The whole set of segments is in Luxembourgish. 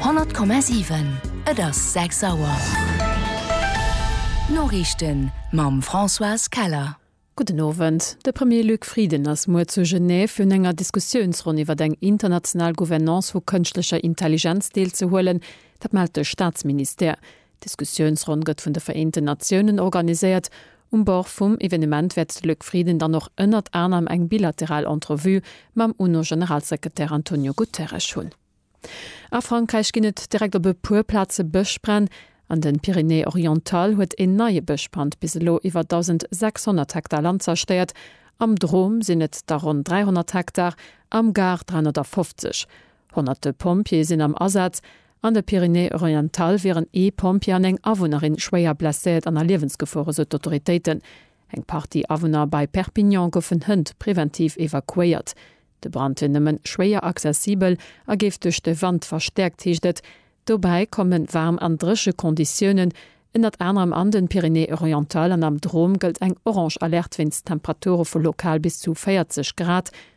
100,7 Et ass 6 Auer. D'Noriichten mam Françoise Keller. Gudden Owend. De Premier Luc Frieden ass muer zu Genève fir un enger Diskussiounsronn iwwert eng international Gouvernance vu kënschtlecher Intelligenz deelzehuelen. Dat mellt de Staatsministère. D'Diskussiounsronn gëtt vun de Vereenten Natiounen organiséiert. Um Bord vum Evenement wäert de Luc Frieden dann och ënnert anerem eng bilateral Entrevue mam UNO-Generalsekretär Antonio Guterres hunn. A Frankräich ginn et direkt op e puer Plaze Bëschbränn. An den Pyrénées Orientales huet een neie Bëschbrand bis elo iwwer 1.600 Hektar Land zerstéiert. Am Drôme sinn et der ronn 300 Hektar, am Gard 350. Honnerte Pompjeeë sinn am Asaz. An de Pyrénées-Orientales wieren ee Pompjee an eng Awunnerin schwéier blesséiert an a Liewensgefor, esou d'Autoritéiten. Eng Partie Awunner bei Perpignan goufen Hënt preventiv evakuéiert. De Brand wier nëmmen schwéier accessibel a géif duerch de Wand verstäerkt, heescht et. Dobäi kommen waarm an dréche Konditiounen. Ënnert anerem an de Pyrénées-Orientales an am Drôme gëllt eng orange Alerte wéinst Temperature vu lokal bis zu 40 Grad.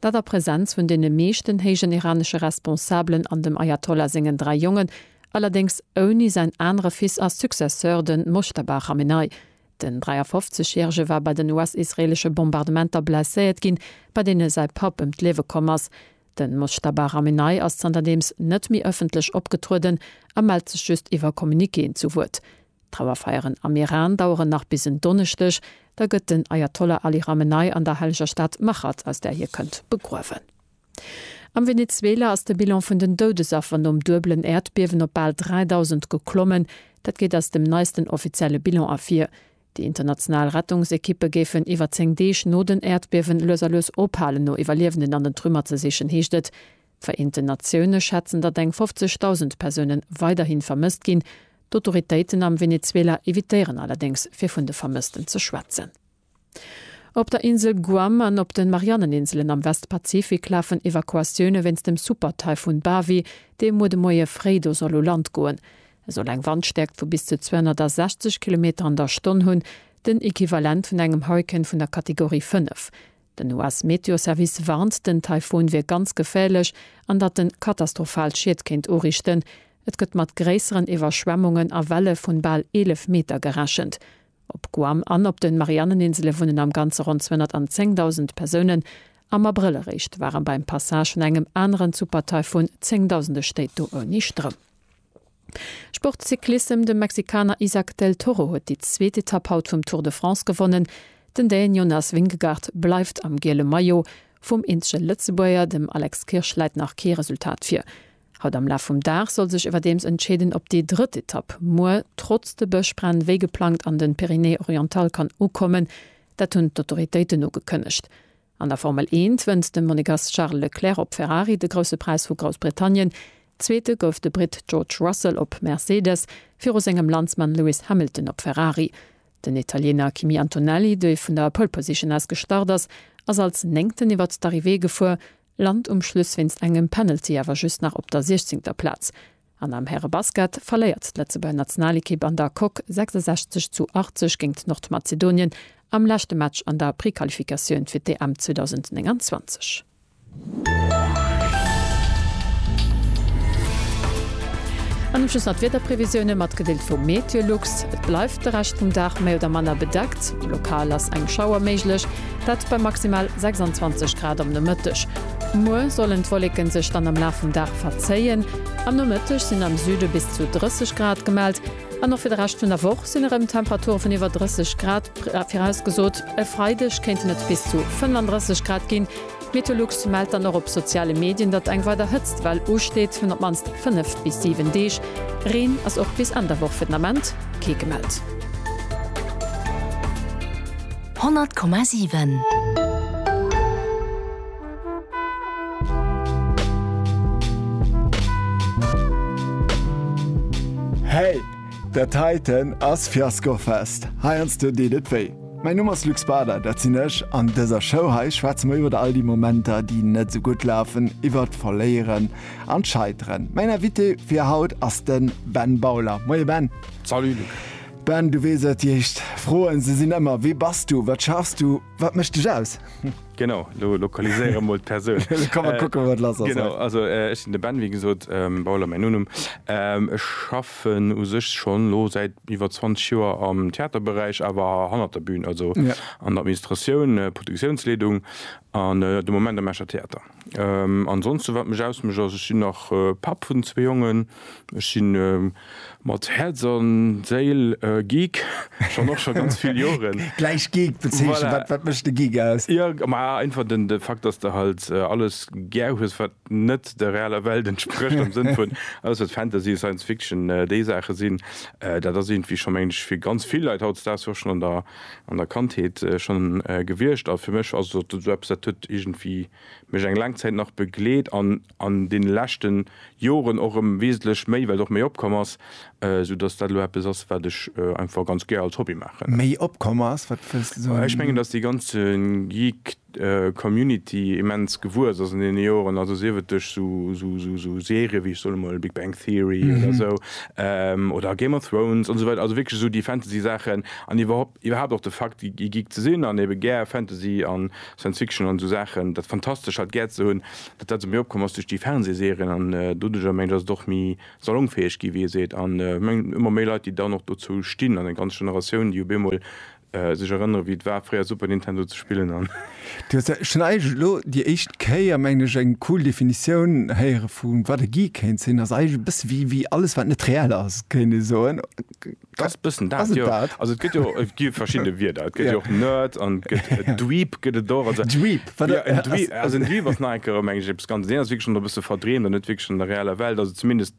Dat a Presenz vun deene meeschten héijen iranesche Responsabelen an dem Ayatollah sengen dräi Jongen, allerdéngs ouni säin anere Fils a Successeur, de Mojtaba Chamenei. Den 53 järege war bei den US-israeelesche Bombardementer blesséiert ginn, bei deene säi Papp ëm d'Liewe komm ass. De Mojtaba Chamenei ass zanterdeems net méi ëffentlech opgetrueden a mellt sech just iwwer Communiquéen zu Wuert. D'Trauerfeieren am Iran daueren nach bis en Donneschdeg, da gëtt den Ayatollah Ali Ramenei an der helleger Stad Machad, aus där hie kënnt, begruewen. Am Venezuela ass de Bilan vun den Doudesaffer nom duebelen Äerdbiewen op bal 3.000 geklommen. Dat geet aus dem neisten offizielle Bilan ervir. Déi international Rettungsekippe géifen iwwer 10 Deeg no den Äerdbiewen lues a lues ophalen, no Iwwerliewenden an den Trümmer ze sichen, heescht et. D'Vereenten Natioune schätzen, datt eng 50.000 Persoune weiderhi vermësst ginn. D'Autoritéiten am Venezuela evitéieren allerdéngs fir vun de Vermëssten ze schwätzen. Op der Insel Guam an op de Marianneninselen am Westpazifik lafen Evakuatioune wéinst dem Super-Taifun Bavi, dee muer de Moie fréi do soll u Land goen. E soll eng Wandstäerkt vu bis zu 260 Kilometer an der Stonn hunn, den Equivalent vun engem Hurrikan vun der Kategorie 5. Den US-Meteoservice warnt, den Taifun wier ganz geféierlech an datt en katastrophal Schied kéint uriichten. Et gëtt mat gréisseren Iwwerschwemmungen a Welle vun bal 11 Meter gerechent. Op Guam an op de Marianneninsele wunnen am Ganze ronn 210.000 Persounen. Am Abrëll eréischt ware beim Passage vun engem aneren Supertaifun zéngdausende Stéit do ouni Stroum. Sport Cyclissem De Mexikaner Izack del Toro huet déi zweet Etapp haut vum Tour de France gewonnen. Den Däen Jonas Vingegaard bleift am giele Maillot. Vum eenzege Lëtzebuerger, dem Alex Kirsch, läit nach kee Resultat vir. Haut am Laf vum Dag soll sech iwwerdeems entscheeden, ob déi drëtt Etapp muer trotz de Bëschbränn wéi geplangt an de Pyrénées-Orientales kann ukommen. Dat hunn d'Autoritéiten ugekënnegt. An der Formel Eent wënnt de Monegass Charles Leclerc op Ferrari de Grousse Präis vu Groussbritannien. Zweete gouf de Britt George Russell op Mercedes, viru sengem Landsmann Lewis Hamilton op Ferrari. Den Italiener Kimi Antonelli, dee vun der Pole Position aus gestart ass, ass als Néngten iwwert d'Arrivée gefuer, lant um Schluss wéinst engem Penalty awer just nach op der siechzéngter Plaz. An am Härebasket verléiert d'Lëtzebuerger Nationalekipp an der Coque 66 zu 80 géingt Nordmazedonien am leschte Match an der Prequalifikatioun fir d'EM 2029. An um Schluss nach d'Wiederprevisioune matgedeelt vu MeteoLux. Et bleift de Rescht vum Dag méi oder manner bedeckt, lokal ass eng Schauer méiglech, dat bei maximal 26 Grad am Nomëtteg. Muer sollen d'Wolleke sech dann am Laf vum Dag verzéien. Am Nomëtteg sinn am Süde bis zu 30 Grad gemellt an och fir de Rescht vun der Woch sinn erëm Temperature vun iwwer 30 Grad virausgesot. E Freideg kéinten et bis zu 35 Grad ginn. D'Metolux mellt dann och op soziale Medien, datt eng weider Hëtztwell usteet vun op d'mannst 5 bis 7 Deeg. Reen ass och bis Enn der Woch fir den Ament kee gemellt. 100,7. Hey! Dat heiten ass Fiaskofest. Heiansdo deet et wéi. Mäin Numm ass Luc Spader, dat sinn ech. An dëser Show hei schwätze mer iwwer all déi Momenter, déi net esou gutt lafen, iwwert d'Verléieren an d'Scheiteren. Mäin Invité fir haut ass de Ben Bauler. Moie Ben! Salut Luc! Ben, du weess et, déi éischt Froen, se sinn ëmmer, Wie bass du? Wat schaffs du? Wat mécht dech aus? Genau, lo lokaliséiere mol d'Persoun. Da kann mer kucken, wat lass ass. Genau, also ech sinn de Ben, wéi gesot, Bauler mäin Nonum. Ech schaffen u sech schonn elo säit iwwer 20 Joer am Theaterberäich, awer hannert der Bün, also an der Administratioun, Produktiounsleedung an de Moment am Escher Theater. Ansonsten wat mech ausmecht ass ech sinn nach Papp vun zwee Jongen. Ech sinn mat Häerz an Séil Geek, schonn och scho ganz vill Joren. Gläich Geek bezeechnen, wat wat mécht de Geek aus? Jo, ma einfach den de Fakt, dass de halt alles gär hues wat net der realer Welt entsprécht, am Sënn vun alles wat Fantasy, Science Fiction, déi Saache sinn. Dat ass iergendwéi scho mengen ech fir ganz vill Leit hautdesdaags och schonn an der an der Kandheet schonn gewiescht a fir mech ass et esou eppes, dat huet iergendwéi mech eng laang Zäit nach begleet an an deene leschte Joren och erëm wesentlech méi, well et och méi opkomm ass, soudass dat elo eppes ass, wat ech einfach ganz gär als Hobby maachen. Méi opkomm ass? Wat wëlls de soen? Ech mengen, dass déi ganze Geek. Community immens gewuess ass an deene Joren, also sief et duerch sou Serien wéi, ech soen emol, Big Bang Theory oder esou, oder Game of Thrones an esou weider, also wierklech esou déi Fantasy-Saachen an iwwerhaupt och de Fakt e Geek ze sinn an ebe gär Fantasy an Science Fiction an esou Saachen, dat Fantastescht halt gär ze hunn, datt dat esou méi opkomm ass duerch déi Fernsehserien an doduerjer, mengen ech, ass et och méi salongfäeg ginn, wéi ee seet an ech mengen ëmmer méi Leit, déi dann och dozou stinn an eng ganz Generatioun, déi op eemol sech erënneren wéi et war fréier Super Nintendo ze spillen an. Du hues jo schonn eigentlech elo déi éischt Kéier, mengen ech, eng cool Definitioun héiere vu wat e Geek kéint sinn. Ass eigentlech e bësse wéi wéi alles wat net reell ass, kéint ee soen. Ass e bëssen dat, jo. Ass et dat? Also et gëtt jo, et gi verschidde Wierder. Et gëtt jo och Nerd an et gëtt e Dweeb gëtt et och. Also Dweeb, wat ass. Also en Dweeb ass nach eng Kéier erëm mengen ech eppes ganz, deen ass wierklech schonn e bësse verdreemt an net wierklech an der reeller Welt. Also zumindest.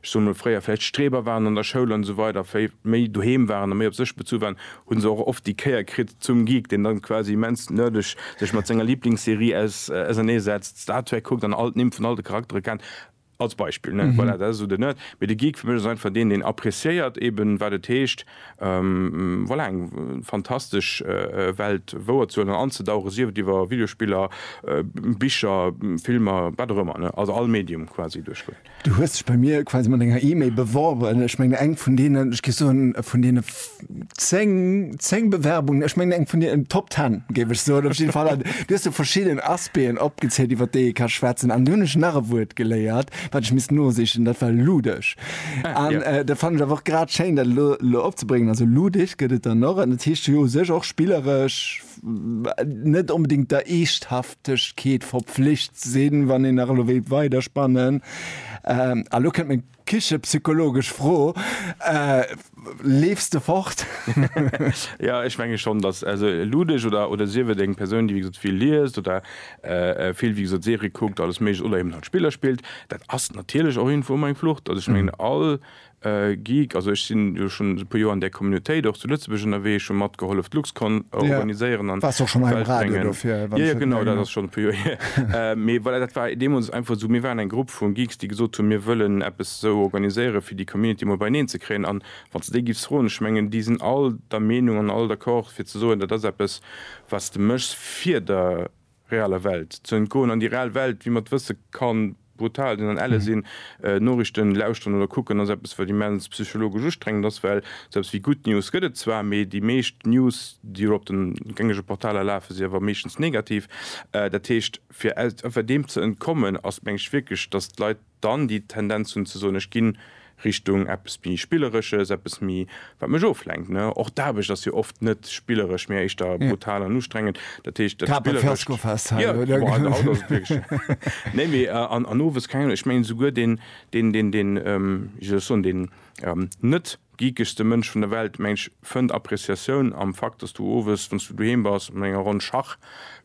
ech soen emol fréier vläicht Streber waren an der Schoul an esou weider, wéi méi doheem waren a méi op sech bezu waren, hu se och oft déi Kéier kritt zum Geek, deen dann quasi immens nerdeg sech mat senger Lieblingsserie ausernee setzt, Star Trek kuckt an all d'Nimm vun all de Charaktere kennt, als Beispill, ne? Voilà, dat ass esou de Nerd. Mee de Geek fir mech ass einfach deen, deen appreciéiert eben, wat et heescht, voilà, eng fantastesch Welt wouerzehuelen an anzedauchen, sief et iwwer Videospiller, Bicher, Filmer, wat och ëmmer, ne? Also all Medium quasi duerchgoen. Du hues dech bei mir quasi mat enger E-Mail beworben. Ech mengen eng vun deenen, ech géif soen, vun deene 10, 10 Bewerbungen, ech mengen eng vun deenen Top 10, géif ech soen, op jidde Fall. An du hues do verschidden Aspecten opgezählt, iwwert déi ee ka schwätzen. An du hunn ech nach e Wuert geléiert, wat ech misst nosichen, dat war luddeg. An dat fannen ech awer och grad schéin, dat elo, elo opzebréngen. Also luddeg gëtt et dann och, an dat heescht jo u sech och spilleresch, net onbedingt der Eeschthaftegkeet verpflicht sinn, wann een nach elo wéilt weiderspannen. Ähm, a lo kënnt meng kichepsychologesch Fro, äh, Leefs de fort? Ja, ech menge schonn, datt also Ludech oder, oder sief et eng Persoun, déi wéi gesot vill liest oder äh, vill wéi gesot Serie kuckt, alles Méiglecht oder eben halt Spiller spillt, dat ass natierlech och irgendwou emol eng Flucht. Also ech mengen, all Geek, also ech sinn jo schonn e puer Joer an där Communautéit och zu Lëtzebuerg ënnerwee, ech hu matgehollef d'Luxcon organiséieren an bréngen. Jo, jo, genau, dat ass schonn e puer Joer hier. Mee voilà, dat war deemools einfach esou, mir waren eng Grupp vu Geeks, déi gesot hunn, mir wëllen eppes esou organiséieren, fir déi Community emol beineen ze kréien. An wann s de déi giffs froen, ech mengen, déi sinn all der Meenung an all d'accord, fir ze soen, dat ass eppes, wat s de méchs fir der reeller Welt ze entgoen, an déi reell Welt, wéi mer et wësse, ka brutal sinn an elle sinn. Noriichten lauschteren oder kucken ass eppes, wat immens psychologesch ustrengend ass, well esou eppes wéi Good News gëtt et zwar, mee déi meescht News, déi elo op de gängege Portaler lafen, si awer meeschtens negativ. Dat heescht, fir deem ze entkommen, ass, mengen ech, wierklech, datt d'Leit, dann déi Tendenz hunn ze soen, ech ginn Richtung eppes méi Spilleresches, eppes méi, wat mech oflenkt. Och d'Aarbecht ass jo oft net spilleresch, mä éischter brutal an ustrengend. Dat heescht, dat Spillerescht, jo, haut ass et wierklech, nee, mee an owes, keng Ahnung, ech mengen esouguer deen, deen, deen, deen, wéi soll ech soen, deen net geekegste Mënsch vun der Welt, meng ech, fënnt Appréciatioun am Fakt, datt s du owes, wann s du doheem bass mat enger Ronn Schach,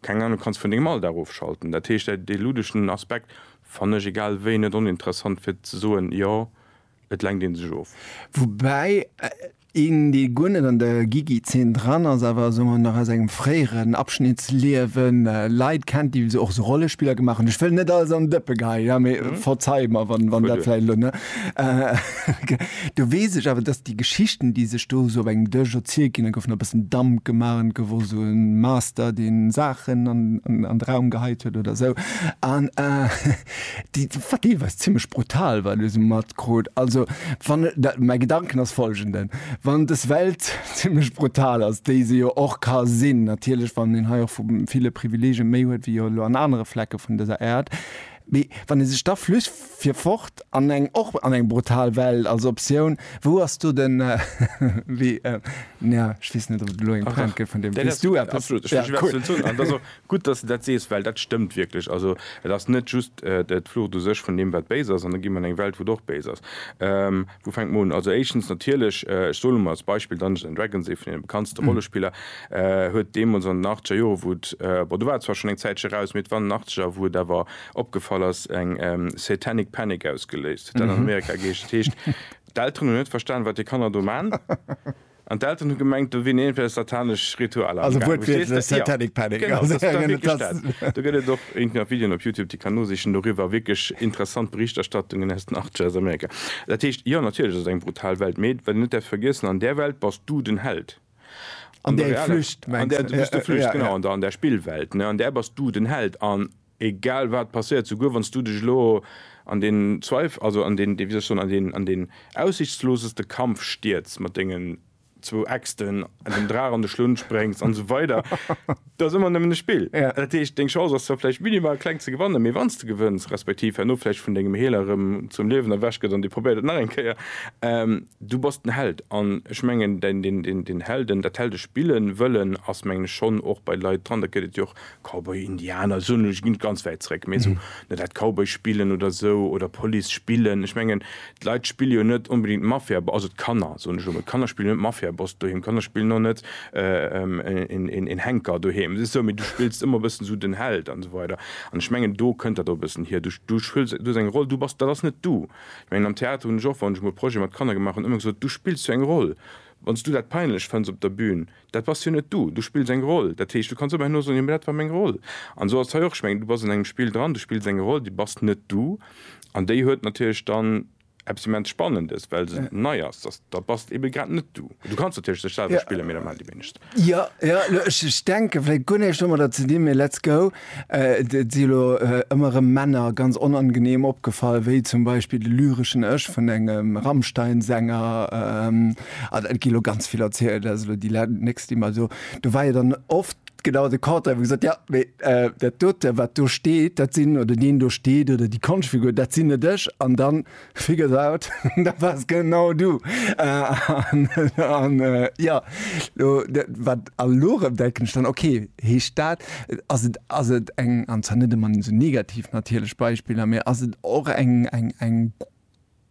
keng Ahnung, kanns vun dengem Alldag ofschalten. Dat heescht, dee luddegen Aspekt, Fannen ech egal wéi net oninteressant fir ze soen jo et lenkt een sech of. Woubäi een dee guer net an der Gigi Zeen dran ass awer soen mer nach aus engem fréieren Abschnitt Liewen Leit kennt déi esou och esou Rollespiller gemaach hunn. Ech wëll net alles an den Dëppe geheien, mee verzei mer wann dat vläicht elo, Do weess ech awer, dass déi Geschichten, déi sech do esou op engem Dësch erzielt ginn, da gouf nach e bëssen Damp gemaach an et gouf och esou e Master, dee Saachen an de Raum geheit huet oder esou an déi, wat deelweis zimmlech brutal war, elo esou matkrut. Also, wann dat, mäi Gedanken ass folgenden, Wann des Welt zimmlech brutal ass, déi se jo och ka sinn, natierlech, wann een hei och vu ville Privileegien méi huet wéi jo elo an anere Flecke vun dëser Äerd, Mee wann ee sech da flücht fir fort an eng, och an eng brutal Welt als Optioun, wou ass do den, wéi, nja, ech weess net ob et elo eng Pointe gëtt vun deem, weess du eppes? Absolut, ech weess wat ze soen. An et ass och gutt, datt s de dat sees, well dat stëmmt wierklech. Also et ass net just d'Flucht u sech vun deem wat béis ass, an da gi mer an eng Welt wou et och béis ass. Wou fänkt man un? Also éischtens natierlech, ech soe lo mol als Beispill Dungeons and Dragons, ee vun deene bekanntste Rollespiller, huet deemools an den achtzeger Jore wou et, bon do war et zwar schonn eng Zäitche raus, mee et war an den achtzeger wou et awer opgefall ass, eng Satanic Panic ausgeléist. Huet dat an Amerika geheescht. Dat heescht, d'Elteren hunn net verstan, wat hir Kanner do man. An d'Elteren hu gemengt, do wier iergendwéi satanesch Ritualer am gaangen. Also wuertwiertlech satanic panic. Genau, dat war wierklech dat. Do gëtt et och iergendwéi nach Videoen op Youtube, déi kann nosichen doriwwer. Wierklech interessant Berichterstattungen aus den Achtzeger aus Amerika. Dat heescht, jo, natierlech ass et eng brutal Welt, mee wat een net däerf vergiessen, an där Welt bass du den Held. An der reeller Welt, an där du bist de Flücht, genau, an der Spillwelt, an där bass du den Held. Egal wat passéiert, souguer wann s du dech elo an deen Zweif-, also an deen, wéi soll ech soen, an deen, an deen aussichtsloseste Kampf stierz mat dengen zwou Äxten, dem Draach an de Schlunn spréngs an esou weider, et ass ëmmer nëmmen e Spill. Dat heescht, deng Chance ass zwar vläicht minimal kleng ze gewannen, mee wann s de gewënns, respektiv herno vläicht vun dengem Healer erëm zum Liewen erwächt gëtt an dee probéiert et nach eng Kéier, du bass den Held. An ech mengen, deen, deen, deen, deen Helden, dat Heldespillen wëllen, ass mengen ech schonn och bei Leit dran. Dat gëtt et jo och Cowboy Indianer soen ech net ganz wäit zréck, mee esou ne dat Cowboy spillen oder esou oder Police spillen. Ech mengen d'Leit spille jo net onbedingt Mafia, also d'Kanner soen ech elo mol, d'Kanner spillen net Mafiaboss doheem, d'Kanner spillen och net een Henker doheem, se esou, mee du spills ëmmer e bëssen esou den Held an esou weider an ech mengen do kënnt dat och e bëssen hier, du du spills du hues eng Roll, du bass dat ass net du. Ech mengen am Theater hunn ech och wann ech emol Projet mat Kanner gemaach hunn ëmmer gesot, du spills jo eng Roll, wann s du dat peinlech fënns op der Bühn, Dat bass jo net du. Du spills eng Roll. Dat heescht, du kanns ëmmer herno soen, jo, mä dat war meng Roll. An esou ass et hei och. Ech mengen, du bass an engem Spill dran, du spills eng Roll, déi bass net du. An déi huet natierlech dann eppes immens Spannendes, well se nei ass. Dass, da bass et ebe grad net du. Du kanns natierlech dech selwer spillen, mä dat maachen déi wéinegst. Jo, jo, ech denken vläicht guer näischt domadder ze dinn, mä let's go. Et si elo ëmmer rëm Männer ganz onangeneem opgefall, wéi zum Beispill de lyreschen Ech vun engem Rammstein-Sänger. An et gi lo ganz vill erzielt, dat ass elo déi nächst, déi mer do. Do war jo dann oft genau de Contraire, wou gesot, Jo, mee dat dote, wat do steet, dat sinn, oder deen do steet oder déi Konschtfigur, dat sinn net ech. An dann Figures out, dat wars genau du! An jo, lo wat a lo rëm denken ech dann, ok, heescht dat, ass et, ass et eng, an zwar net ëmmer sou negativ natierlech Beispiller, mee ass et och eng, eng, eng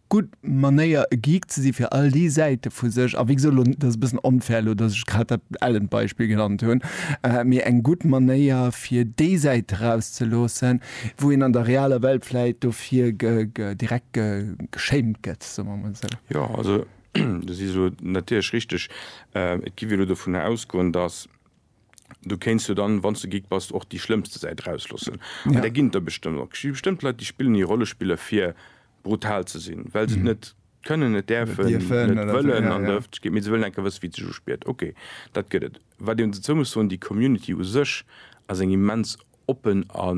gutt Manéier e Geek ze si fir all déi Säite vu sech, a wéi gesot, lo dat ass e bëssen unfair elo, datt ech grad dat Ellen-Beispill genannt hunn, mee eng gutt Manéier fir déi Säit erauszeloossen, Wou een an der realer Welt vläit dofir direkt geschéimt gëtt, soe mer mol esou. Jo, also do si se natierlech richteg. Et gi mir elo dovunner ausgoen, datt du kéints jo dann, wann s de Geek bass, och déi schlëmmste Säit erausloossen. An där ginn et der bestëmmt och. Et gi bestëmmt Leit, déi spillen hir Rollespiller, fir brutal ze sinn, well se et net kënnen, net däerfen, net wëllen an dëft Geet. Mee se wëllen enke wësse wéi et sech uspiert. Okay, dat gëtt et. Wat een dozou muss soen, déi Community u sech ass eng immens oppen a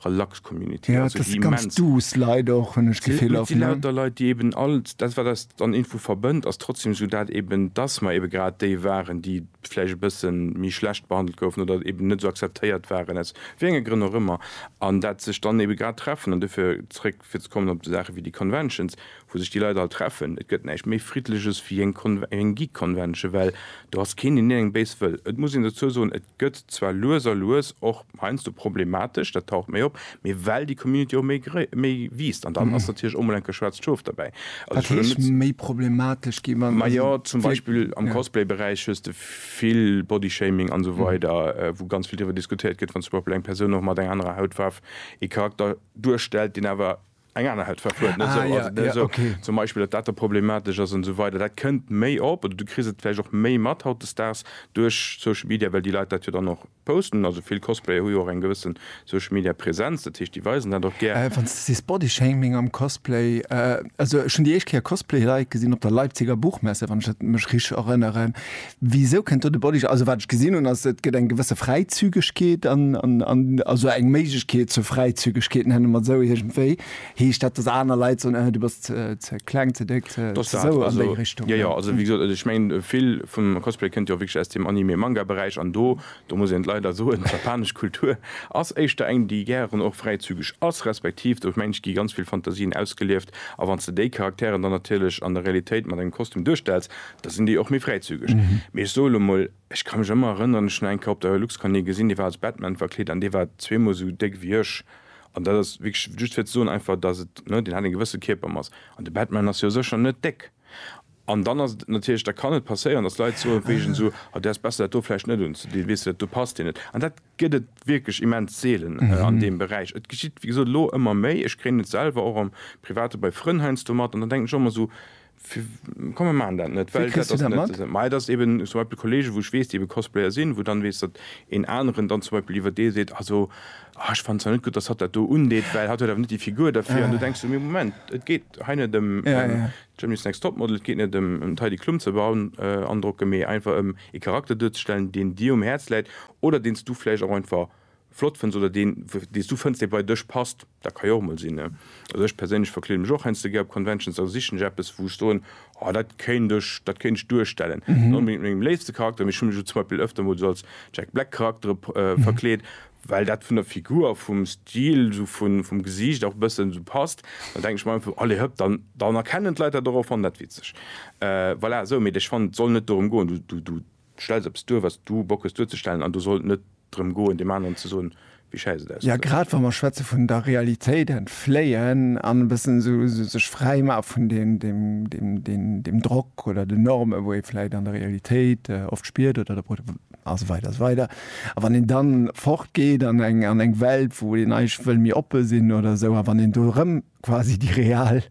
relax Community. Ja, dat si ganz duuss Leit och, hunn ech d'Gefill oft, ne? Et si lauter Leit, déi eben all dat, wat eis an Info verbënnt, ass trotzdem esou dat eben, dass mer ebe grad déi waren, déi vläicht e bësse méi schlecht behandelt goufen oder eben net esou akzeptéiert waren, aus wéi enge Grënn och ëmmer, an dat sech dann ebe grad treffen an dofir zréck. Fir ze kommen op esou Saache wéi déi Conventions, wou sech déi Leit all treffen, et gëtt näischt méi Friddleches wéi eng Geek-Convention, well do ass keen, deen ierengem béis wëll. Et muss een dozou soen, et gëtt zwar lues a lues och heiansdo problematesch, dat taucht méi op, mee well déi Community och méi wiisst. An dann ass natierlech och mol enke schwaarzt Schof derbäi. Wat heescht méi problematesch ginn? Majo, zum Beispill am Cosplay-Beräich hues de vill Bodyshaming an esou weider, wou ganz vill driwwer diskutéiert gëtt, wann zum Beispill eng Persoun och mat enger anerer Hautfaarf ee Charakter duerstellt, deen awer eng aner Hautfaarf huet, net esou, also net esou zum Beispill, datt dat da problematesch ass an esou weider. Dat kënnt méi op oder du kriss et vläicht och méi mat hautdesdaags duerch Social Media, well déi Leit dat jo dann och posten. Also vill Cosplayer hu jo och eng gewësse Social Media Presenz, dat heescht déi weisen dat och gär. Wann s de sees Bodyshaming am Cosplay, also ech hunn déi éischt Kéier Cosplay-Leit gesinn op der Leipziger Buchmesse, wann ech dat mech richteg erënneren, Wisou kënnt do de Bodyguard? Also wat ech gesinn hunn ass, et gëtt eng gewësse Fräizügegkeet an, an, also eng Méiglechkeet zur Fräizügegkeet, nenne mer et esou iergendwéi. Heescht dat, datt aner Leit soen, Äh, du bass ze kleng, ze déck, ze esou an déi Richtung? Jo, jo, also wéi gesot, ech mengen vill vum Cosplay kënnt jo wierklech aus dem Anime, Manga Beräich an do, do muss een et leider soen, d'japanesch Kultur ass éischter eng déi gären och fräizügeg ass, respektiv do mengen ech gi ganz vill Fantasien ausgelieft a wann s de déi Charakteren dann natierlech an der Realitéit mat engem Kostüm duerstells, Da sinn déi och méi fräizügeg. Mee ech soe lo mol, ech ka mech ëmmer erënneren, ech hunn eng Kéier op der Luxcon ee gesinn, dee war als Batman verkleet an dee war zweemol esou déck wéi ech. An dat ass wierklech just fir ze soen einfach, dass et, ne, deen hat eng gewësse Kierpermass. An de Batman ass jo sécher net déck. An dann ass et natierlech, da kann et passéieren, dass Leit soe wéi ech, Ah, du häss besser dat do vläicht net unzedinn, weess du, dat do passt dir net. An dat gëtt et wierklech immens seelen an deem Beräich. Et geschitt, wéi gesot, elo ëmmer méi. Ech kréien et selwer och am Private bei Frënn heiansdo mat an dann denken ech och ëmmer esou, Komm mir maachen dat net, well dat ass net esou. Mä et ass eben zum Beispill Kollegen, wou ech weess, déi ebe Cosplayer sinn, wou dann weess, datt een aneren dann zum Beispill iwwer dee seet, also ah ech fannen zwar net gutt, datt hatt dat do undeet, well hatt huet awer net déi Figur derfir. An du denks de, mee Moment, et geet hei net ëm Germany's Next Topmodel, et geet net ëm d'Heidi Klum ze beandrocke, mee einfach ëm ee Charakter duerzestellen, deen dir um Häerz läit oder deen s du vläicht och einfach flott fënns oder deen, deen s du fënns, dee bei dech passt, dat ka jo och emol sinn. Also ech perséinlech verkleede mech och heiansdo gär op Conventions, da sichen ech eppes, wou ech soen, oh dat kéint ech, dat kéint ech duerstellen. Net onbedéngt mat mengem léifste Charakter, mee ech hu mech elo zum Beispill ëfter mol esou als Jack Black Charaktere verkleet, well dat vun der Figur a vum Stil, esou vun, vum Gesiicht och e bëssen esou passt. Da denken ech mer einfach, allez hëpp, dann, dann erkennen d'Leit dat och a fannen dat witzeg. Voilà, esou. Mee ech fannen, et soll net dorëm goen, du, du, du Du stells eppes duer, wat s du Bock hues duerzestellen, an do soll et net drëm goen, deem aneren ze soen, wéi schäiss et ausgeseit. Grad wa mer schwätze vun der Realitéit entfléien an e bëssen esou sech fräi maache vun deem Drock oder den Normen, wou ee vläicht an der Realitéit oft spiert, oder esou weider esou weider. A wann een da fort geet an eng Welt, wou een eigentlech wëll méi oppe sinn oder esou, a wann een do erëm quasi déi real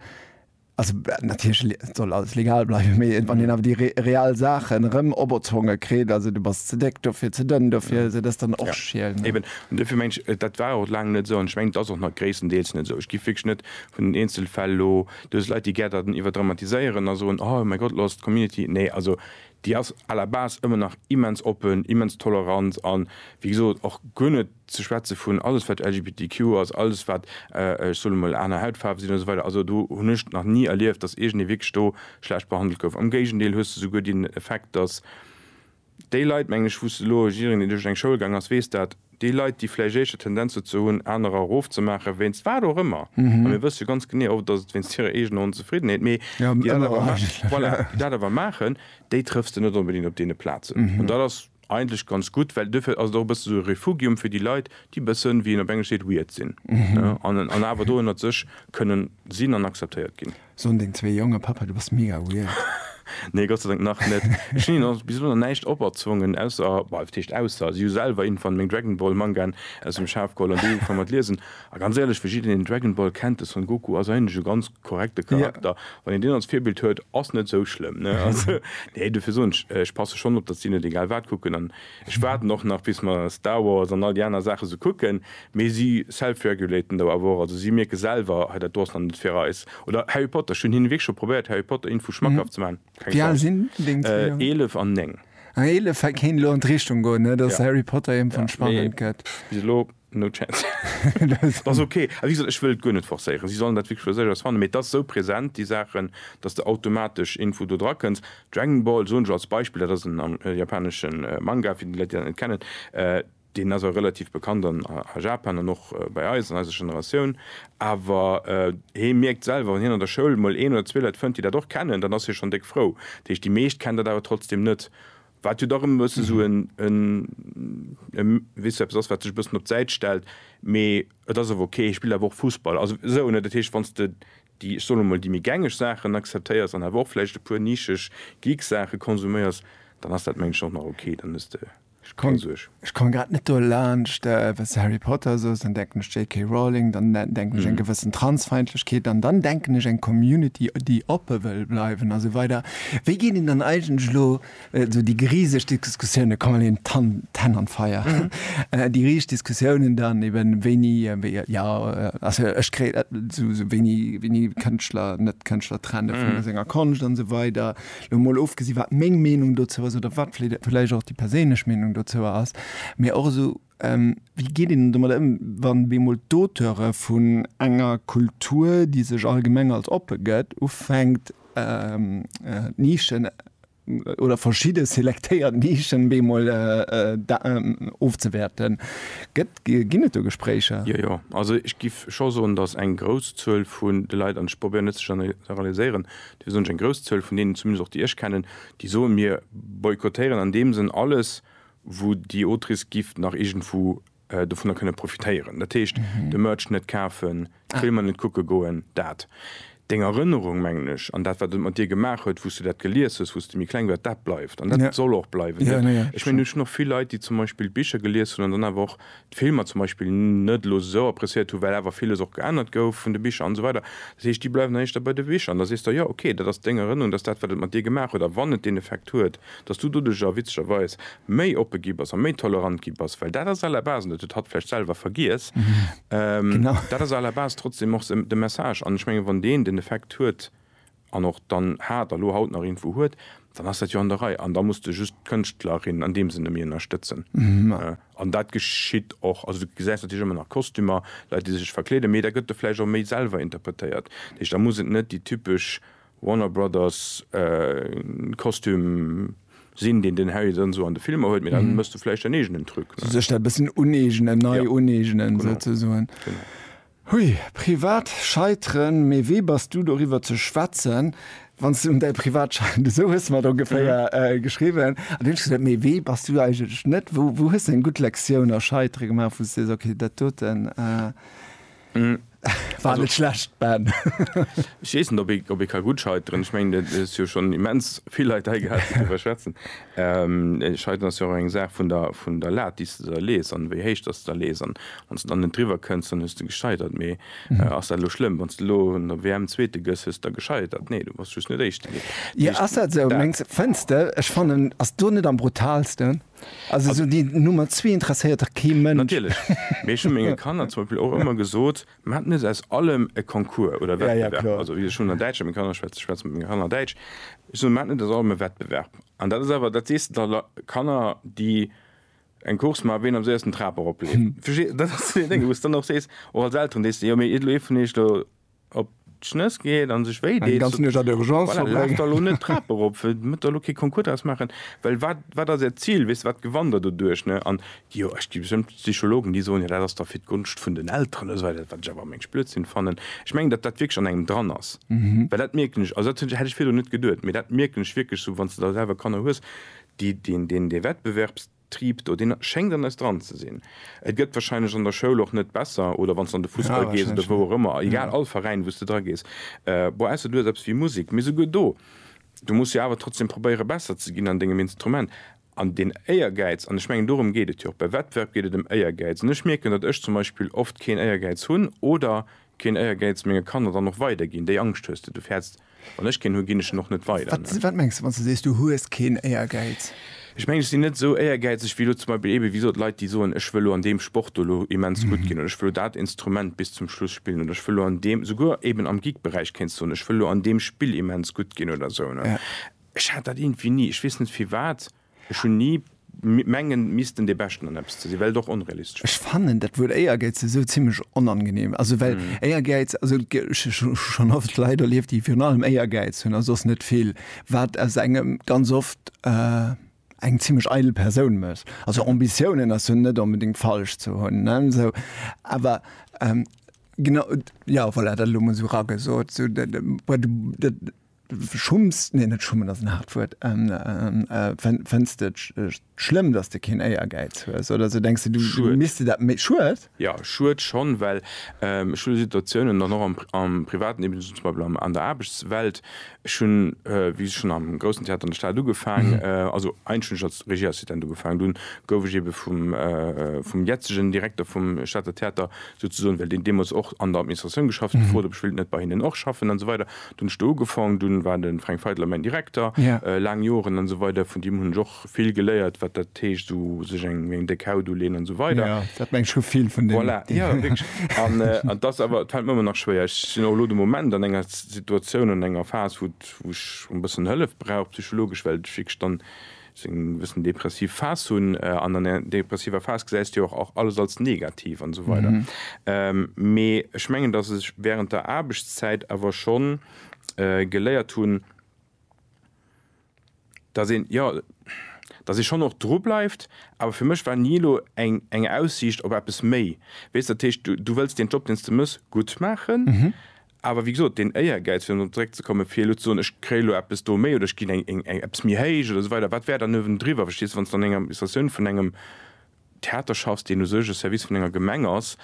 Also natierlech soll alles legal bleiwen, mee wann een awer déi real Saachen erëm operzwonge kritt, also du bass ze déck dofir, ze dënn dofir, esou, dat ass dann och schiel, ne? Eben, an dofir mengen ech, dat war och laang net esou an ech mengen, et ass och nach gréisstendeels net esou. Ech géif wierklech net vun den Eenzelfäll elo, do ass Leit, déi gär dat iwwerdramatiséieren a soen, oh mäi Gott, elo ass d'Community, nee, also déi ass à la base ëmmer nach immens oppen, immens tolerant a wéi gesot och guer net, ze schwätze vun alles wat LGBTQ ass, alles wat, ech soen emol, aner Hautfaarwe sinn, esou weider, also do hunn ech nach ni erlieft, datt iergendee wierklech do schlecht behandelt gouf. Am Géigendeel hues de souguer deen Effekt, datt déi Leit, mengen ech, wou s de elo, jiddereen deen duerch eng Schoul gaang ass weess dat, déi Leit déi vläicht éischter Tendenz dozou hunn anerer erofzemaachen, wéinst wat och ëmmer, a mir wësse jo ganz genee oft ass et wéinst hirer eegener Onzefriddenheet, mee déi dat awer maachen, déi trëffs de net onbedéngt op deene Plazen. An dat ass. Eigentlech ganz gutt, well duerfir ass et och e bësse sou e Refugium fir déi Leit, déi e bëssen, wéi een op Englesch seet, weird sinn, ne, an an awer do ënnert sech kënnen sinn an akzeptéiert ginn. Soen deng zwee Jongen, Papa, du bass mega weird? Nee, Gott sei Dank nach net. Ech hunn hinnen bis elo nach näischt operzwongen, ausser, bah, wat heescht ausser, si hu selwer een van meng Dragon Ball Mangaen aus dem Schaf geholl an déi ugefaang mat liesen. A ganz éierlech, fir jiddereen deen Dragon Ball kennt, de Son Goku ass eigentlech e ganz korrekte Charakter. Wann een deen als Virbild huet, ass net esou schlëmm, ne? Also, nee, dofir soen ech, ech passe schonn op, datt si net egal wat kucken. An ech waarden och nach, bis mer Star Wars an all déi aner Saache sou kucken. Mee si self-regulaten do awer och. Also si mierke selwer, hei, dat do ass nach net fir eis. Oder Harry Potter, ech hunn hinne wierklech scho probéiert, Harry Potter Info schmackhaft ze maachen. Keng Wéi al Chance. sinn deng zwee Jongen? Eelef an néng. Ah, eelef kéint elo an d'Richtung goen, ne, datt Ja. Harry Potter iergendwann Ja, mee spannend gëtt. pff, bis elo. No chance. Et ass ok. A wéi gesot, ech wëll et guer net forcéieren. Si sollen dat wierklech fir sech aus fannen. Mee et ass esou present, déi Saachen, datt s de automatesch Info do dra kënns. Dragon Ball, soen ech als Beispill, dat ass en japanesche Manga, fir déi Leit, déi dat net kennen. Deen ass och relativ bekannt a Japan an och bei eis, an eiser Generatioun. Awer hie mierkt selwer, wann hien an der Schoul emol een oder zwee Leit fënnt, déi dat och kennen, dann ass hie schonn déck frou. Dat heescht, déi meescht kennen dat awer trotzdeem net. wat jo dach ëm e bëssen esou en, en, en, weess du, eppes ass, wat sech e bëssen op d'Säit stellt, mee et ass awer ok, hie spillt awer och Fussball, also esou, ne? Dat heescht, wann s de déi, ech soen emol, déi méi gängeg Saachen akzeptéiers an awer och vläicht e puer nischeg Geek-Saache konsuméiers, dann ass dat, mengen ech, och nach ok, dann hues de keng Suerg. Ech komme grad net dolaanscht, wann s de Harry Potter soos, dann denken ech JK. Rowling, dann denken ech eng gewëssen Transfeindlechkeet an dann denken ech eng Community, déi oppe wëll bleiwen a sou weider. Wéi geet een dann eigentlech elo esou déi riseg Diskussiounen, komm elo een d'Hänn an d'Feier, déi riseg Diskussiounen dann eben, wéini, jo, also ech kréien esou wéini Kënschtler, Net-Kënschtler trenne vun senger Konscht an esou weider, Elo mol ofgesi wat meng Meenung dozou ass oder wat vläicht och déi perséinlech Meenung dozou ass, mee och esou wéi geet een domat ëm, wann bemol d'Auteure vun enger Kultur, déi sech allgemeng als oppe gëtt, ufänkt d'Nischen oder verschidde selektéiert Nischen bemol ofzewäerten. Ginn et do Gespréicher? Jo, jo. Also ech géif scho soen, datt eng grouss Zuel vun de Leit, an ech probéieren net ze generaliséieren, Dofir soen ech, eng grouss Zuel vun deenen, zumindest och déi ech kennen, déi soen, mir boykottéieren an deem Sënn alles, wou déi Autrice giff nach iergendwou dovunner kënne profitéieren. Dat heescht, de Merch net kafen, d'Filmer net kucke goen. Dat. Deng Erënnerung, mengen ech, an dat, wat et mat dir gemaach huet, wou s du dat gelies hues, wou s du méi kleng wars, dat bleift an dat soll och bleiwen. Ech mengen, ech hunn och vill Leit, déi zum Beispill d'Bicher gelies hunn an dann awer och d'Filmer zum Beispill net elo esou appreciéiert hu well awer villes och geännert gouf vun de Bicher an esou weider. Dat heescht, déi bleiwen dann éischter bei de Bicher an da sees de, jo ok, dat ass deng Erënnerung, dat ass dat wat et mat dir gemaach huet a wann et deen Effekt huet, datt s du doduerjer witzegerweis méi oppe gi bass a méi tolerant gi bass, well dat ass à la base, an dat huet hatt vläicht selwer vergiess, dat ass à la base trotzdem och de Message an ech mengen wann deen den Effekt huet, an och dann hat a lo haut nach irgendwou huet, dann ass dat jo an der Rei an da muss de just d'Kënschtlerin an deem Sënne méi ënnerstëtzen. An dat geschitt och. Also du gesäis natierlech ëmmer nach Kostümer, Leit déi sech verkleeden, mee da gëtt de vläicht och méi selwer interpretéiert. Dat heescht, da muss et net déi typesch Warner Brothers Kostüm sinn, deen den Harry dann esou an de Filmer huet, mee da méchs du vläicht däin eegenen Truc. Sech dat e bëssen uneegnen, nei uneegnen souzesoen. Genau. Hui, privat Scheiteren, mee wee bass du doriwwer ze schwätzen, wann s de un däi privat scheitert, esou hues de mer et ongeféier geschriwwen. An du hunn ech gesot, mee wee bass du eigentlech net, wou wou hues de eng gutt Lektioun a Scheitere gemaach, wou s de sees, okay, dat doten war net schlecht, Ben. Ech weess net, ob ee ka gutt scheiteren. Ech mengen, et hues jo schonn immens vill Leit hei gehat, déi doriwwer schwätzen. Entscheidend ass jo och eng Saach vun der Lat, déi s de der lees an wéi héich dass de der lees. An wann s de dann net driwwer kënns, dann hues de gescheitert. Mee ass dat elo schlëmm, wann s de elo an der WM Zweete gëss? Hues de da gescheitert? Nee, du bass just net Éischte ginn. Jo, ass dat esou? Mengs de? Fënns de? Ech fannen, ass do net am brutaalsten? Also esou déi Nummer zwee interesséiert dach kee Mënsch. Natierlech. Mee ech hu menge Kanner zum Beispill och ëmmer gesot, Mir haten net aus allem e Concours oder Wettbewerb. Also ech hunn an Däitsch mat menge Kanner geschwätzt, ech schwätze mat menge Kanner Däitsch. Ech soen, mir haten net aus allem e Wettbewerb. An dat ass awer, dat sees de da Kanner, déi eng Course maachen, wien am séiersten d'Trap eropleeft. Dat ass zu deene Dénge, wou s de dann och sees, och als Elteren, sees de, jo mee jitt elo ee vun iech do op. d'Schnëss geet an sech wéi deet, voilà, laaft der elo net d'Trap erop, métt der elo kee Concours draus maachen, well wat, wat ass Äert Zil, weess de, wat gewannt Der doduerch, ne? An jo, ech gi bestëmmt Psychologen, déi soen, jo dat ass da fir d'Gonscht vun den Elteren oder esou weider, wat ech awer am mengst Blödsinn fannen. Ech mengen, datt dat wierklech an engem dran ass, well dat mierken ech, also dat hätt ech virdrun net geduet, mee dat mierken ech wierklech sou, wann s de da selwer Kanner hues, déi deen, deen, dee Wettbewerbs, Triip do, deen schéngt an eis dran ze sinn. Et gëtt wahrscheinlech an der Schoul och net besser oder wann s de an de Fussball gees oder wou och ëmmer, egal, all Veräin wou s de dra gees, bon, ausser du hues eppes wéi Musek, mee souguer do, du muss jo awer trotzdem probéiere besser ze ginn an dengem Instrument. An deen Éiergäiz, an ech mengen dorëm geet et jo och, bei Wettbewerb geet et ëm Éiergäiz, an ech mierken, datt ech zum Beispill oft keen Éiergäiz hunn oder Keen Éiergäiz, menge Kanner dann och weider ginn. Déi Angscht hues de, du fäerts, wann ech keen hu, ginn ech en och net weider. Wat mengs de, wann s de sees, du hues keen Éiergäiz? Ech mengen, ech sinn net esou éiergäizeg wéi elo zum Beispill ebe, wéi gesot, Leit, déi soen, ech wëll elo an deem Sport do elo immens gutt ginn oder ech wëll elo dat Instrument bis zum Schluss spillen oder ech wëll elo an deem, souguer eben am Geek-Beräich kéints soen, ech wëll elo an deem Spill immens gutt ginn oder esou. Ech hat dat iergendwéi ni. Ech weess net firwat. Ech hun ni mengen missten dee Beschten an eppes ze sinn, well et och onrealistesch wär. Ech fannen dat Wuert Éiergäiz esou zimlech onangenehm. Also well Éiergäiz, also ech hu schonn oft Leit erlieft, déi virun allem Éiergäiz hunn a soss net vill, wat aus engem ganz oft eng zimlech eidel Persoun mécht. Also Ambitiounen ass jo net onbedéngt falsch ze hunn, ne? Esou, awer genau, jo voilà, dat elo mol esou eragesot, esou dat, schumms, nee net schummen ass en haart Wuert, fënns de et schlëmm, datt de keen Éiergäiz hues oder esou, denks de du misste dat méi, Schued? Jo, Schued schonn, well ech hu Situatiounen dann och am Privaten, eben zum Beispill an der Aarbechtswelt, ech hunn, wéi ech schonn am Groussen Theater an der Stad ugefaangen, also eigentlech hunn ech als Regieassistent ugefaangen, dunn gouf ech ebe vum jetzegen Direkter vum Stater Theater souzesoen, well deen deemools och an der Administratioun geschafft huet, gefrot, ob ech wéilt net bei hinnen och schaffen an esou weider. Du hunn ech do ugefaang, dunn war de Fränk Feidler mäin Direkter laang Joren an esou weider. Vun deem hunn ech och vill geléiert, wat dat heescht, esou sech eng eng déck Haut uleeën an esou weider. Dat mengt scho vill vun deem. Voilà, jo, wierklech. An et ass awer, et fält mer ëmmer nach schwéier. Ech sinn och elo de Moment an enger Situatioun, an enger Phas, wou ech e bëssen Hëllef brauch, psychologesch, well ech wierklech dann, se eng bëssen depressiv Phas hunn, an an der depressiver Phas gesäis de jo och alles als negativ an esou weider. Mee ech mengen, datt ech während der Aarbechtszäit awer scho geléiert hunn, datt een, jo, datt ee schonn och dru bleift, awer fir mech war ni elo eng eng Aussiicht op eppes méi, weess. Dat heescht, du wëlls deen Job, deen s de méchs, gutt maachen, Awer wéi gesot, deen Éiergäiz, fir dorop zeréckzekommen, fir elo ze soen, ech kréie elo eppes do méi oder ech ginn eppes méi héich oder esou weider, wat wär dann uewendriwwer? Verstees de, wann s de an enger Administratioun vun engem Theater schaffs, deen u sech e Service vun enger Gemeng ass,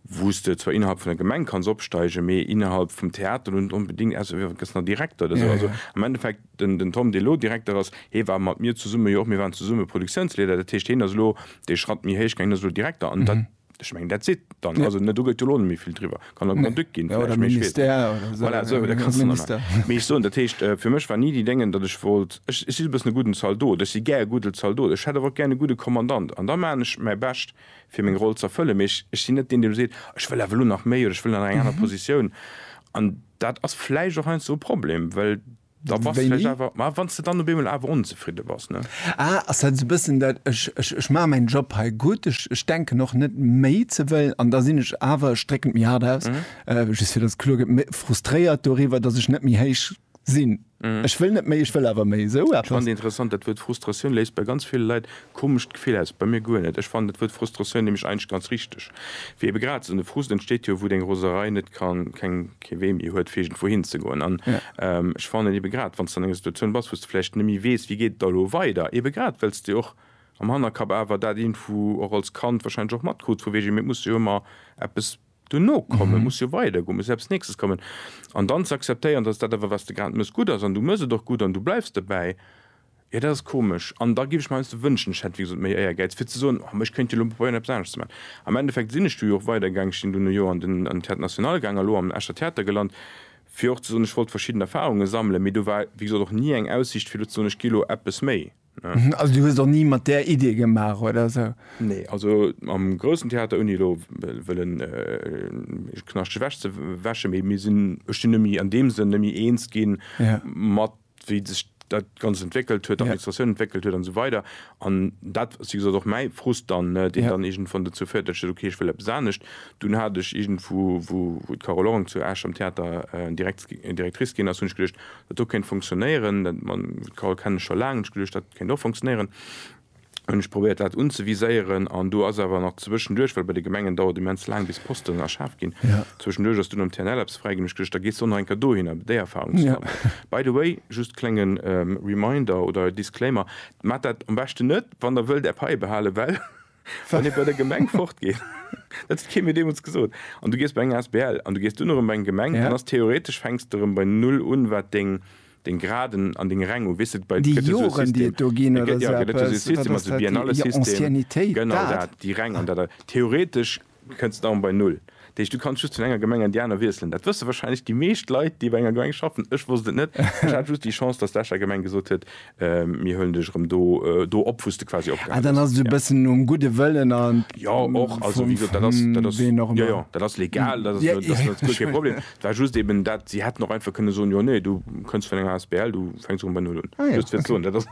wou s de zwar innerhalb vun der Gemeng kanns opsteigen, mee innerhalb vum Theater elo net onbedéngt, außer du gëss nach Direkter oder esou. Also am Endeffekt, den den Tom, dee elo Direkter ass, hee war mat mir zesumme jo och, mir waren zesumme Produktiounsleeder, dat heescht, hien ass elo dee Schratt méi héich gaangen, hien ass elo Direkter an dat, Ech meng that's it dann ja. also, ne, du gëtt jo lo net méi vill driwwer kann der Grand-Duc nee. ginn ja, oder Ministère oder so, voilà, so ja, kannst du Minister. Mee ech soen dat heescht äh, fir mech war ni déi Déngen datt ech wollt ech, ech si e bëssen e gudden Zaldot ech si gär e gudde Zaldot ech hätt awer och gär e gudde Kommandant an da maan ech mäi Bescht fir meng Roll z'erfëllen mee ech, ech sinn net deen dee lo seet ech wëll awer lo nach méi oder ech wëll an eng aner mhm. Positioun an dat ass vläicht och heiansdo e Problem well Da bass de vläicht awer, ma wann s de dann op eemol awer onzefridde bass, ne? Ah, ass dat esou e bëssen dat, ech, ech, ech maache mäin Job hei gutt, ech, ech denken och net méi ze wëllen an da sinn ech awer, ech drécken et méi haart aus, just fir datt et kloer gëtt, mé frustréiert doriwwer, datt ech net méi héich sinn. Ech wëll net méi, ech wëll awer méi. Esou eppes. Spannend, interessant, dat Wuert Frustratioun léist bei ganz ville Leit Komescht Gefill aus, bei mir guer net. Ech fannen dat Wuert Frustratioun nämlech eigentlech ganz richteg, wéi ebe grad esou. De Frust entsteet jo, wou deng Roserei net kann, keng, kee Wee méi huet fir iergendwou hin ze goen. An ech fannen ebe grad, wann s de an enger Situatioun bass, wou s de vläicht net méi weess, wéi geet et da elo weider, ebe grad well s de och am Hannerkapp awer dat iergendwou och als Kand wahrscheinlech och matkruuts vu wegen, mee et muss jo ëmmer eppes Dono kommen, muss jo weider goen, muss eppes nächstes kommen an dann ze akzeptéieren, dass dat awer, wat s de grad mëss, gutt ass an du mëss et och gutt an du bleifs dobäi, jo dat ass komesch. An da géif ech mer heiansdo wënschen, ech hätt, wéi gesot, méi Éiergäiz, fir ze soen, oh, mä ech kéint jo elo probéieren, eppes anescht ze maachen. Am Endeffekt sinn ech du jo och weidergaangen, ech sinn dono jo an den Théâtre national gaangen a elo am Escher Theater gelant, fir och ze soen, ech wollt verschidden Erfahrungen sammelen, mee do war, wéi gesot, och ni eng Aussicht, fir elo ze soen, ech gi elo eppes méi. Also du hues och ni mat där Idee gemaach oder sou? Nee, also am groussen Theater, ouni elo wëllen ee Knascht ewech ze wäschen, mee mir sinn, ech sinn nëmme an deem Sënn nëmme eens ginn, mat wéi sech dat Ganzt entwéckelt huet, d'Administratioun entwéckelt huet an esou weider. An dat ass wéi gesot och mäi Frust dann, deen dann iergendwann dozou féiert, datt ech gesot hunn, okay, ech wëll eppes anescht. Dunn hat ech iergendwou, wou d'Carole Orang zu Esch am Theater Direkt Directrice ginn ass, hunn ech geduecht, Wat do kéint funktionéieren, dat mam Carole kennen ech scho laang, hunn ech geduecht, dat kéint och funktionéieren, hunn ech probéiert dat unzeviséieren an do ass awer nach zwëschenduerch, well bei de Gemengen dauert immens laang bis Posten erschaf ginn, zwëschenduerch ass dunn am TNL eppes fräi ginn, hunn ech geduecht, da gees de och nach eng Kéier dohinner fir déi Erfahrung ze sammeln. By the way, just klénge Reminder oder Disclaimer, Maacht dat am beschten net, wann der wëllt är Paie behalen, well. Wann ee bei der Gemeng fortgeet, dat huet kee mir deemools gesot, an du gees bei eng Asbl an du gees dunn erëm bei eng Gemeng, dann ass theoretesch, fänks de erëm bei Null un, wat deng Graden an deng Räng u. Weess de, bei. Déi Joren, déi et do ginn oder esou eppes? Wat ass dat? Déi Anciennitéit, dat. Genau dat, déi Räng an dat. Theoretesch Du kënns dann bei Null. Dat heescht, du kanns just vun enger Gemeng an déi aner wiesselen. Dat wësse wahrscheinlech déi meescht Leit, déi bei enger Gemeng schaffen. Ech wosst et net. Ech hat just déi Chance, dass d'Escher Gemeng gesot huet, Mir huelen dech erëm do, do op, wou s de quasi opgehal hues. Ah, dann ass et e bëssen nom gudde Wëllen a vu ween och ëmmer. Jo, jo, dat ass legal. Dat ass guer kee Problem. Et war just eben dat, si hätten och einfach kënne soen, Jo, nee, du kënns vun enger asbl, du fänks erëm bei Null un. Just fir ze soen, dat ass.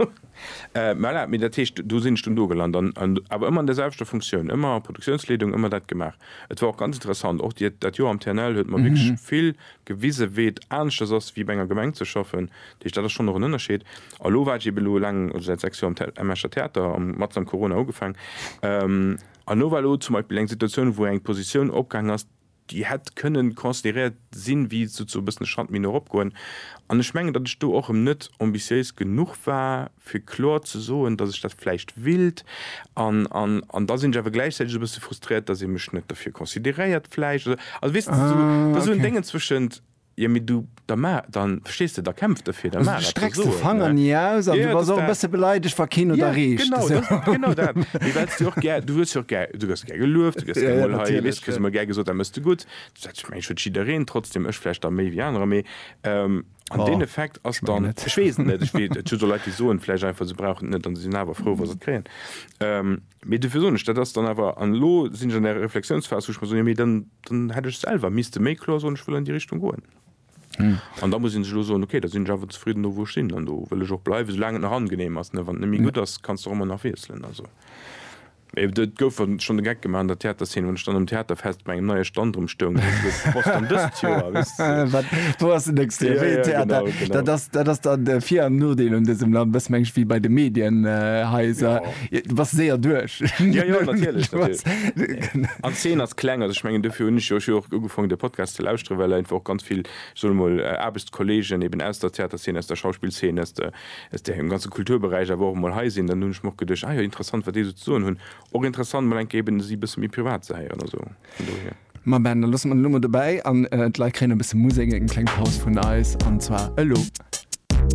Voilà, mee dat heescht, do sinn ech dunn do gelant, an awer ëmmer an där selwechter Funktioun, ëmmer Produktiounsleedung, ëmmer dat gemaach. Et war och ganz interessant, och déi, dat Joer am TNL huet mer wierklech vill gewise wéi et aneschters ass wéi bei enger Gemeng ze schaffen. Dat heescht, dat ass schonn och en Ënnerscheed. A lo war ech ebe lo laang, also säit 6 Joer am Escher Theater, am matzen am Corona ugefaangen, an elo war elo zum Beispill eng Situatioun, wou eng Positioun opgaangen ass, déi hätt kënnen consideréiert sinn, wéi et souzoe bëssen e Schratt méi no erop goen, an ech mengen, datt ech do och erëm net ambitiéis genuch war, fir kloer ze soen, datt ech dat vläicht willt, an, an, an da sinn ech awer gläichzäiteg e bësse frustréiert, datt ee mech net derfir consideréiert vläicht, oder, also weess de, da sou en Déngen zwëschent. Jo mee du, da ma, da, verstees de, da kämpf derfir, da Also maach du et, da strecks so de et, Fanger ne? ni aus an Ja, du ja, bass dass och e dat, bësse beleidegt wa keen et ja, erreecht, genau, esou. dat, genau dat, mee well s de och gär, du hues jo och gär, du gëss gär gelueft, du gëss Ja, gär ja, mol hei, weess, natierlech, kriss ja. emol gär gesot dat mëss de gutt, du sätz, ech mengen ech huet jiddereen, trotzdem ech vläicht da méi wéi anerer, mee ähm, an Oh, deen Effekt ass ech mengen dann, net. ech weess et net, ech wee, et gëtt jo Leit déi soen vläicht einfach se brauchen et net an se sinn awer frou wa se et kréien, ähm, Mee dofir soen ech, dat ass dann awer, an elo sinn ech an där Reflexiounsphas, wou ech mer soen, jo mee dann, dann hätt ech selwer misste méi kloer soen, ech wëll an déi Richtung goen. An da muss ee sech elo soen, okay, da sinn ech awer zefridden do wou ech sinn an do wëll ech och bleiwen, soulaang et nach angenehm ass. Wann et net méi gutt ass, kanns de och ëmmer nach wiesselen. Also et gouf schonn de Geck gemaach an der Theaterzeen, wann ech dann um Theaterfest bei engem neie Stand rëm stoung, wou ech wosst, boah, dann dëst Joer, weess de. Wat, wou ass den nächste Joer? Wéi een Theater? Dat ass, dat ass dann de Vir an Nodeel un dësem Land, e bësse mengen ech wéi bei de Medienhaiser. Du bass séier duerch. Jo, jo, natierlech, natierlech. An d'Zeen ass kleng. Also, ech mengen, dofir hunn ech jo och jo och ugefaangen, de Podcast ze lauschteren, well einfach och ganz vill, ech soen emol, Aarbechtskollegen eben aus der Theaterzeen, aus der Schauspillzeen, aus der, aus dem ganze Kulturberäich awer och emol hei sinn. Dann hunn ech mer och geduecht, Ah jo, interessant, wat déi esou ze soen hunn. Och interessant, mol eng Kéier eben si e bësse méi privat ze héieren. Also vun dohier. Ma Ben, da loosse mer d'Nummer dobäi an d'Leit kréien e bësse Musek, eng kleng Paus vun eis, an zwar elo.